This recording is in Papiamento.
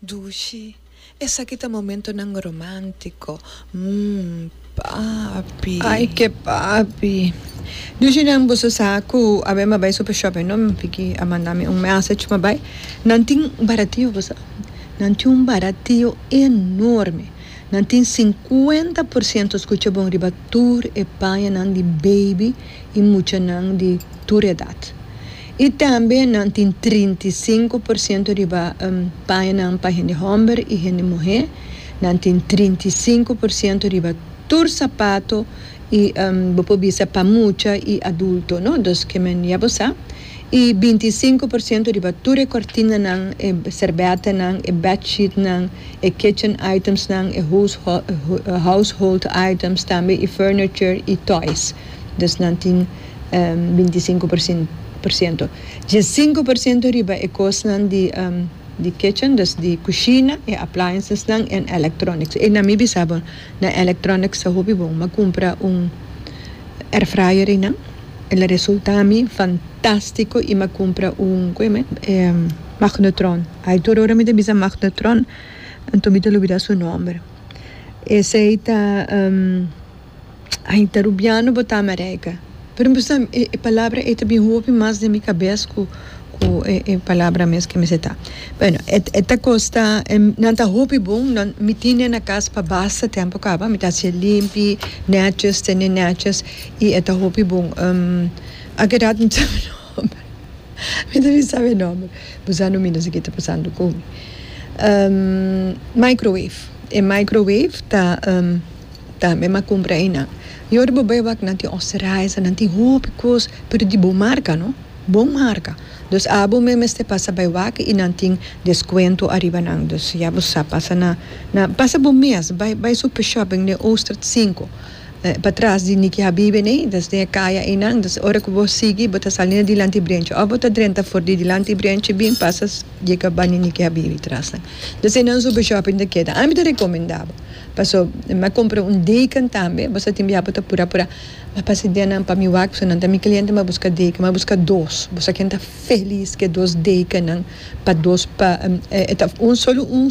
Dushi, Esaki ta momentonan romántico, mm, papi. Ay, ke papi. Dushi, Nan boso sa ku a bai mi bai super shopping no? Vicky a manda mi un message mi a bai. Nan tin baratio boso a bai. Nan tin un baratio enorme. Nan tin sinkuenta por siento skucha bon riba tur e pañanan di beibi i muchanan di tur edat. I tambe nan tin trinta i sinku por siento riba pañanan pa hende hòmber i hende muhé. Nan tin trinta i sinku por siento riba tur sapato i bo por bisa pa mucha i adulto, no? Dus ke men ya bo sa. I binti i sinku por siento riba tur e kòrtinanan, e serbètanan, e bèdsheetnan, e kitchen itemsnan, e household items tambe i furniture i toys. Dus nan tin binti sinku por siento. Dje sinku por siento riba e kosnan di kitchen, dus di kushina, e appliancesnan en electronics. E na mi bisa bo, na electronics ta hopi bon. Mi a kumpra un air fryer einan, el a resulta mi fantástiko i mi a kumpra un, ku eme? Magnetron. Ai tur ora mi ta bisa magnetron, anto mi ta olbida su nòmber. Esei ta. Ai, ta rubiano bo ta America. Pero mi sa e e palabra ei ta bin hopi mas den mi kabes ku ku e e palabra mes ke mi sa ta. Bueno, e e ta kosta nan ta hopi bon, nan mi tin nan na kas pa basta tempu kaba, mi ta hasi e limpi, nètjes, tene nètjes i e ta hopi bon. a kedat mi sabi nòmber, mi ta bin sabi e nòmber, pues a no mina si ke ta pasando ku mi. Microwave, e microwave ta. Ta mi m'a cumpra einan. Y ora bo bai wak nan tin osterheiser, nan tin hopi cos, pero di bon marca, no? Bon marca. Dus abo mi mester pasa bai wak y nan tin descuento ariba nan. Dus ya bo sa, pasa na, na, pasa bo mes, bai, bai Super Shopping den Oostert sinku, patras di Nikki Habibi nei, dus den e caya einan. Dus ora cu bo sigui, bo ta sali na dilanti brenchi. Of bo ta drenta for di dilanti brenchi, bin pasa. dje kaba ni niki a bibi tras nan ta ser nan super shopping ta keda ami ta recomenda bo paso mi a compra un deken tambe bo sa tin bia bo ta pura pura ma pasa dia nan pa mi wak paso nan ta mi cliente mi a busca deken mi a busca dos bo sa ken ta feliz ke dos deken nan pa dos pa un solo un